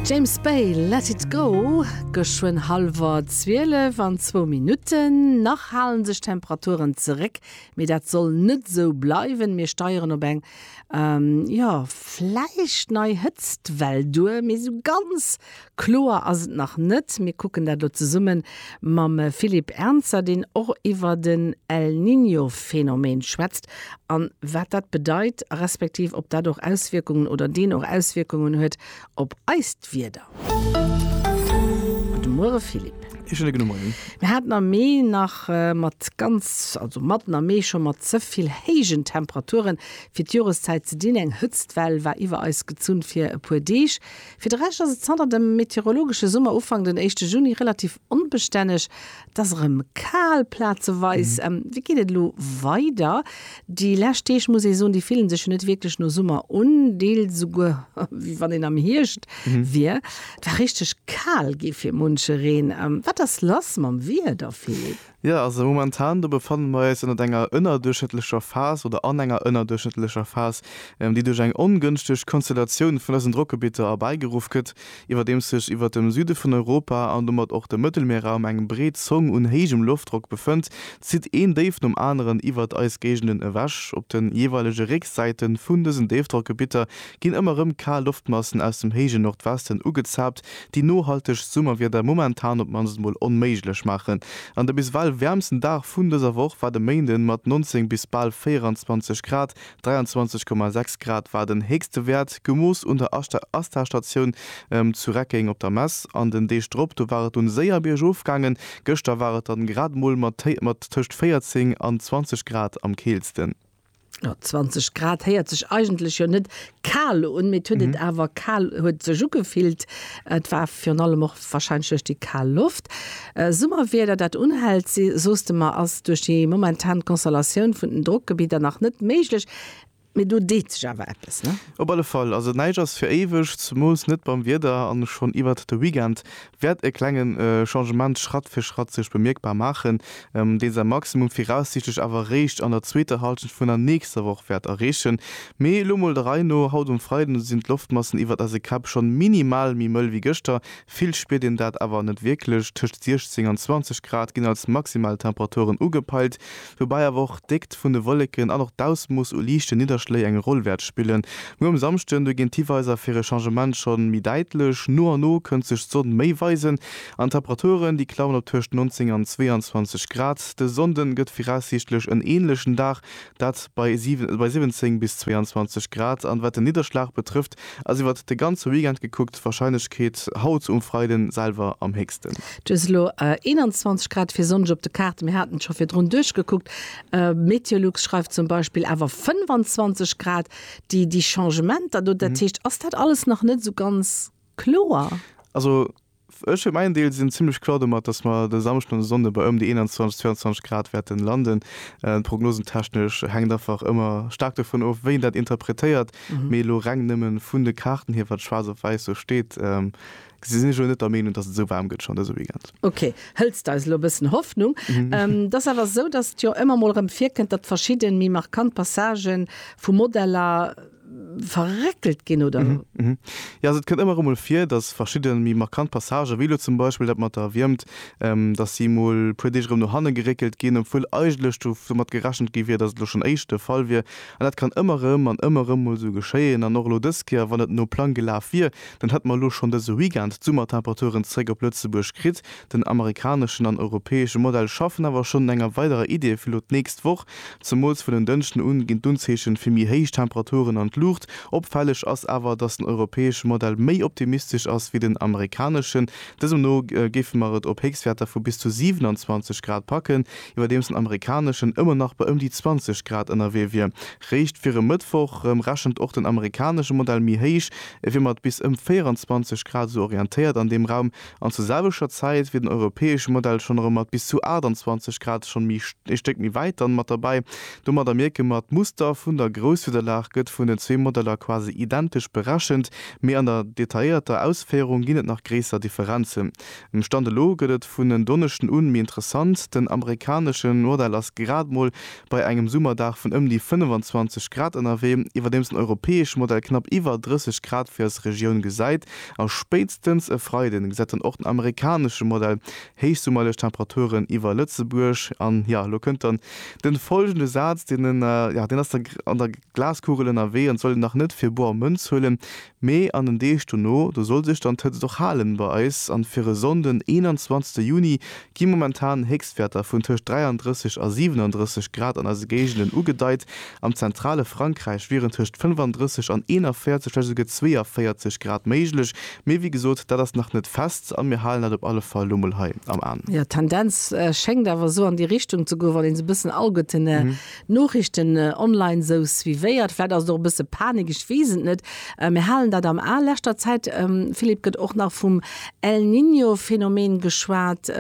James Bay, Let it go, geschwënn hallwer 12 an zwou Minutten. Nach halen sech d'Temperaturen zeréck, mee dat soll net esou bleiwen. Mir steieren op eng, jo, vläicht nei Hëtztwell duer, mee esou ganz Kloer ass et nach net. Mir kucken dat elo zesumme mam Philippe Ernzer, deen och iwwer den El Niño-Phänomen schwätzt an wat dat bedeit, respektiv ob dat och Auswierkungen oder deen och Auswierkungen huet op eist Wieder. Gudde Muere Philippe. Ee schéine gudde Moien. Mir haten am Mee nach mat ganz, also matten am Mee scho mat ze vill héijen Temperaturen fir d'Joreszäit ze dinn. Eng Hëtztwell war iwwer eis gezunn fir e puer Deeg. Fir de Rescht ass et zanter dem meteorologesche Summer Ufank den éischte Juni relativ onbestänneg. Et ass erëm kal, plazeweis. Wéi geet et elo weider? Déi lescht Deeg, muss ee soen, déi fillen sech jo net wierklech no Summer un, deels esouguer wéi wann een am Hierscht wier. Et war richteg kal, geet fir munche Reen. Wat ass lass mam Wieder, Philippe? Jo, also momentan, do befanne mer eis ënnert enger ënnerduerchschnëttlecher Phas oder an enger ënnerduerchschnëttlecher Phas, déi duerch eng ongënschteg Konstellatioun vun eisen Drockgebitter erbäigeruff gëtt, iwwerdeems sech iwwert dem Süde vun Europa an domat och dem Mëttelmierraum eng breet Zong un héijem Loftdrock befënnt, zitt een Déif nom aneren iwwert eis Géigenden ewech. Op de jeeweilege Récksäite vun dësen Déifdrockgebitter ginn ëmmer rëm kal Loftmassen aus dem héije Nordwesten ugezaapt, déi nohaltegt Summerwieder momentan op d'mannst mol onméiglech maachen. An de biswell wäermsten Dag vun dëser Woch war de Méinden mat 19 bis bal 24 Grad, 23,6 Grad war den héchste Wäert, gemooss un der ASTA-Statioun zu Reckeng op der Mess. An den Deeg drop, do war et dunn séier biergof gaangen, gëschter war et dann grad mol mat tëscht 14 an 20 Grad am keelsten. Jo, 20 Grad héiert sech eigentlech jo net kal un, mee et huet et awer kal, huet sech ugefillt. Et war virun allem och wahrscheinlech duerch déi kal Loft. Summerwieder, dat unhält, si soos de mer, ass duerch déi momentan Konstellatioun vun den Drockgebidder nach net méiglech, mee do deet sech awer eppes, ne? Op alle Fall, also näischt ass fir éiweg, zemools net beim Wieder an schonn iwwert de Weekend wäert e klenge Changement Schratt fir Schratt sech bemierkbar maachen, deen säi Maximum viraussiichtlech awer eréischt an der zweeter Hallschent vun der nächster Woch wäert erreechen. Mee elo mol der Rei no, Haut um Freiden sinn d'Loftmassen iwwert eise Käpp schonn minimal méi mëll wéi gëschter, vill spiert een dat awer net wierklech. Tëscht 16 an 20 Grad ginn als Maximaltemperaturen ugepeilt. woubäi awer och d'Déckt vun de Wolleken an och d'Ausmooss u liichte Nidderschléi eng Roll wäert spillen. Muer um Samschden du ginn d'Hiweiser fir e Changement schonn méi däitlech, no a no kënnt sech d'Sonn méi weisen an d'Temperaturen déi klammen op tëscht 19 an 22 Grad. De Sonnden gëtt viraussiichtlech en änlechen Dag, dat bei 17 bis 22 Grad an wat den Nidderschlag betrëfft, Ass iwwert de ganze Weekend gekuckt d'Warscheinlechkeet haut um Freiden selwer am héchsten. Just elo 21 Grad fir sonneg op de Kaarte, mir haten et scho virdrun duerchgekuckt. Meteolux schreift zum Beispill awer 25 Grad. Déi déi Changementer do, dat heescht, ass dat alles nach net esou ganz kloer? Also. Ech fir mäin Deel sinn zimlech kloer domat, dass mer de Samschden an de Sonnde bei ëm déi 21, 22 Grad wäerten landen. Prognosentechnesch hänkt einfach ëmmer staark dovun of, wéi een dat interpretéiert. Mee elo reng nëmme vun de Kaarten hier, wat schwaarz op wäiss sou steet, sinn ech elo net der Meenung, dass et esou waarm gëtt schonn dëse Weekend. Ok, hëlls de eis elo e bëssen Hoffnung. Et ass awer esou, dass et jo ëmmer emol erëm virkënnt, datt verschidde méi markant Passagen vu Modeller, verréckelt ginn, oder? Jo, also et kënnt ëmmer emol vir, datt verschidde méi markant Passagen, wéi elo zum Beispill dat mat der Wiermt, datt si emol e puer Deeg erëm no hanne geréckelt ginn, obwuel eigentlech domat gerechent gi wier, datt et elo schonn éischt de Fall wier. An dat kann ëmmer erëm an ëmmer erëm emol esou geschéien. An och elo dës Kéier, wann et no Plang gelaf wier, dann hätt mer elo schonn dëse Weekend d'Summertemperaturen zeréck op Lëtzebuerg kritt. Den amerikaneschen an europäesche Modell schaffen awer schonn un enger weiderer Idee fir elo d'nächst Woch. Zemools vun den Dënschden un ginn d'Unzeechen fir méi héich Temperaturen an d'Luucht. Opfälleg ass awer, dass den europäesche Modell méi optimistesch ass wéi den amerikaneschen. Dësem no géife mer et op Héchstwäerter vu bis zu 27 Grad packen, iwwerdeems den amerikaneschen ëmmer nach bei ëm déi 20 Grad ënnerwee wier. Réischt fir e Mëttwoch rechent och den amerikanesche Modell méi héich, ewéi mat bis ëm 24 Grad, esou orientéiert an deem Raum An zur selwechter Zäit wier den europäesche Modell schonn erëm mat bis zu 28 Grad schonn méi ee Stéck méi wäit dann mat derbäi. Domadder mierke mer, d'Muster vun der Grousswiederlag gëtt vun den zwee Modeller quasi identesch berechent, mee an der detailléierter Ausféierung ginn et nach gréisser Differenzen. Um Stand elo gëtt et vun en Donneschden un méi interessant, den amerikaneschen Modell ass grad mol bei engem Summerdag vun ëm déi 25 Grad ënnerwee, iwwerdeems den europäesche Modell knapp iwwer 30 Grad fir eis Regioun gesäit. A spéitstens e Freiden gesäit dann och den amerikanesche Modell héichsummerlech Temperaturen iwwer Lëtzebuerg. An, jo, elo kënnt dann de folgende Saz, deen, jo, deen ass da an der, Glaskugelen a Weeën soll een dach net fir boer Mënz huelen, mee an den Deeg dono, do soll sech dann d'Hëtzt och halen bei eis an fir e Sonnden 21 Juni gi momentan Héchstwäerter vun tëscht 33 a 37 Grad an eise Géigenden ugedeit. Am zentrale Frankräich wieren tëscht 35 an 41, vläicht esouguer 42 Grad méiglech, mee wéi gesot, dat ass nach net fest a mir halen dat op alle Fall lo mol hei am An. Jo, d'Tendenz schéngt awer esou an déi Richtung ze goen, wann een esou e bëssen Augetënne Noriichten online sou suivéiert, vläit ass et och e bësse Panik, ech weess et net, mir halen dat am A. Leschter Zäit, Philippe, gëtt och nach vum El Niño Phänomen geschwat.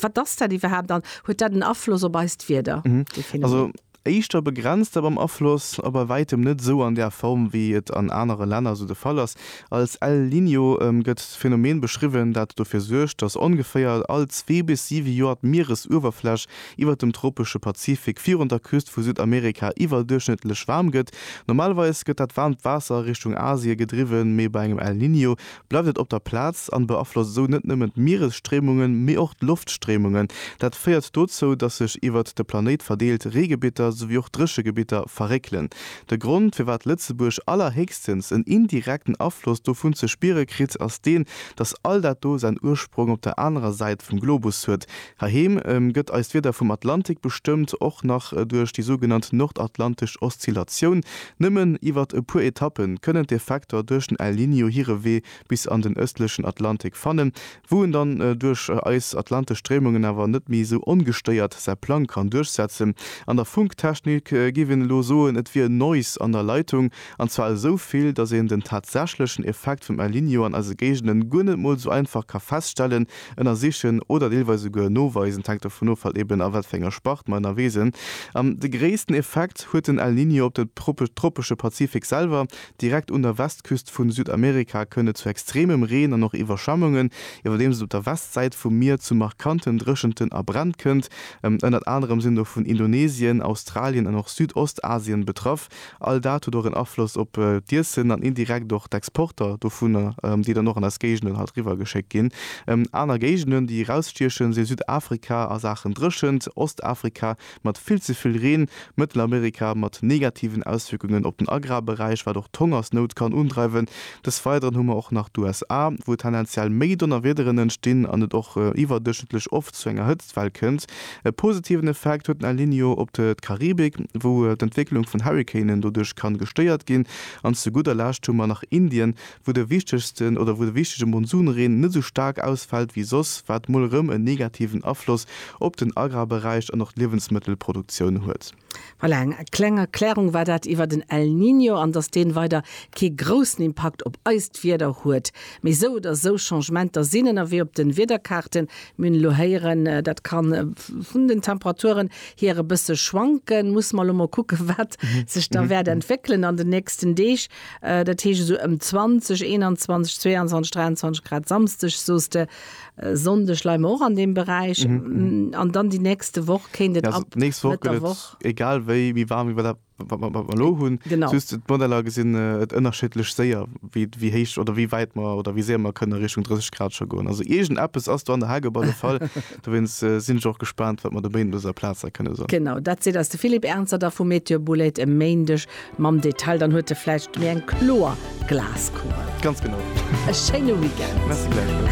Wat ass dat iwwerhaapt an huet dat en Afloss op eist Wieder, dee Phänomen? Éischter begrenzt a beim Afloss a bei wäitem net sou an där Form wéi et an anere Länner sou de Fall ass. Als El Niño gëtt d'Phänomen beschriwwen, dat dofir suergt, datt ongeféier all zwee bis siwe Joer d'Mieresuewerfläch iwwert dem tropesche Pazifik virun der Küst vu Südamerika iwwerduerchschnëttlech waarm gëtt. Normalerweis gëtt dat waarmt Waasser Richtung Asie gedriwwen, mee bei engem El Niño bleift et op der Plaz an beaflosst esou net nëmmen d'Mieresstréimungen, mee och d'Loftstréimungen. Dat féiert dozou, dass sech iwwert de Planéit verdeelt Reegebitter souwéi och Dréchegebitter verréckelen. De Grond, firwat Lëtzebuerg allerhéchstens en indirekten Afloss dovun ze spiere kritt, ass deen, dass all dat do säin Ursprong op der anerer Säit vum Globus huet, Heiheem gëtt eist Wieder vum Atlantik bestëmmt, och nach duerch déi sougenannt nordatlantesch Oszillatioun. Nëmmen iwwert e puer Etappe kënnen d'Effekter duerch den El Niño hire Wee bis an den ëstlechen Atlantik fannen, wou en dann duerch eis atlantesch Stréimungen awer net méi esou ongestéiert säi Plang kann duerchsetzen. An der Funktechnik géif een elo soen, et wier Noise an der Leitung, an zwar esou vill, datt een den tatsächlechen Effekt vum El Niño an eise Géigenden guer net mol esou einfach ka feststellen, ënnersichen oder deelweis esouguer noweisen, et hänkt dovun of halt eben a wat fir enger Spart mer ënnerwee sinn, an de gréissten Effekt huet den El Niño op den tropesche Pazifik selwer. Direkt un der Westküst vun Südamerika kënnt et zu extremem Reen an och Iwwerschwemmungen, iwwerdeems et op der Westsäit vum Mier zu markanten Dréchenten a Bränn kënnt. Ënnert anerem sinn dovun Indonesien, Australien an och Südostasien betraff. All dat huet och en Afloss op d'Iessen an indirekt och d'Exporter dovunner, déi dann och an eis Géigenden halt riwwer geschéckt ginn. Aner Géigenden, déi erausstiechen, si Südafrika a Saachen Dréchent, Ostafrika mat vill ze vill Reen, Mëttelamerika mat negativen Auswierkungen op den Agrarberäich, wat och d'Hongersnout kann undreiwen. Des Weideren hu mer och nach d'USA, wou tendenziell méi Donnerwiederen entstinn an et och iwwerduerchschnëttlech oft zu enger Hëtztwell kënnt. E positiven Effekt huet den El Niño op d'Karibik, wou d'Entwécklung vun Hurrikanen doduerch kann gestéiert ginn. An zu gudder Lescht hu mer nach Indien, wou de wichtegsten oder wou de wichtege Monsunreen net esou staark ausfält wéi soss, wat mol erëm en negativen Afloss op den Agrarberäich an och d'Liewensmëttelproduktioun huet. Voilà, eng kleng Erklärung war dat iwwer den El Niño an dass deen weider kee groussen Impakt op eist Wieder huet. Mee sou oder sou, Changementer sinn ënnerwee op den Wiederkaarten. Mir hunn elo héieren, dat kann vun den Temperaturen hier e bësse schwanken. Musse mer elo mol kucken, wat sech da wäert entwéckelen an den nächsten Deeg. Dat heescht esou ëm 20, 21, 22, 23 Grad Samsdeg, soos de. Äh, Sonndeg leie mer och an deem Beräich. Mhm, mhm. Mm, An dann déi nächste Woch kéint et Ja, also ab d'nächst Woch Mëtt gëtt der et Woch. egal wéi méi waarm, wéi wat dat- wat wat mer elo hunn. Genau. Just d'Modeller gesinn äh, et ënnerschiddlech séier, wéi wéi héich oder wéi wäit mer oder wéi séier mer kënne Richtung 30 Grad scho goen. Also iergend eppes ass do an der Hageb alle Fall. Dowéinst äh, sinn ech och gespaant, wat mer dobéi no dëser Plaz da kënne soen. Genau, dat seet eis de Philippe Ernzer da vu Météo Bouled e Méindeg mam Detail. Dann huet e vläicht méi eng kloer Glaskugel. Ganz genau. E schéine Weekend. Merci gläichfalls.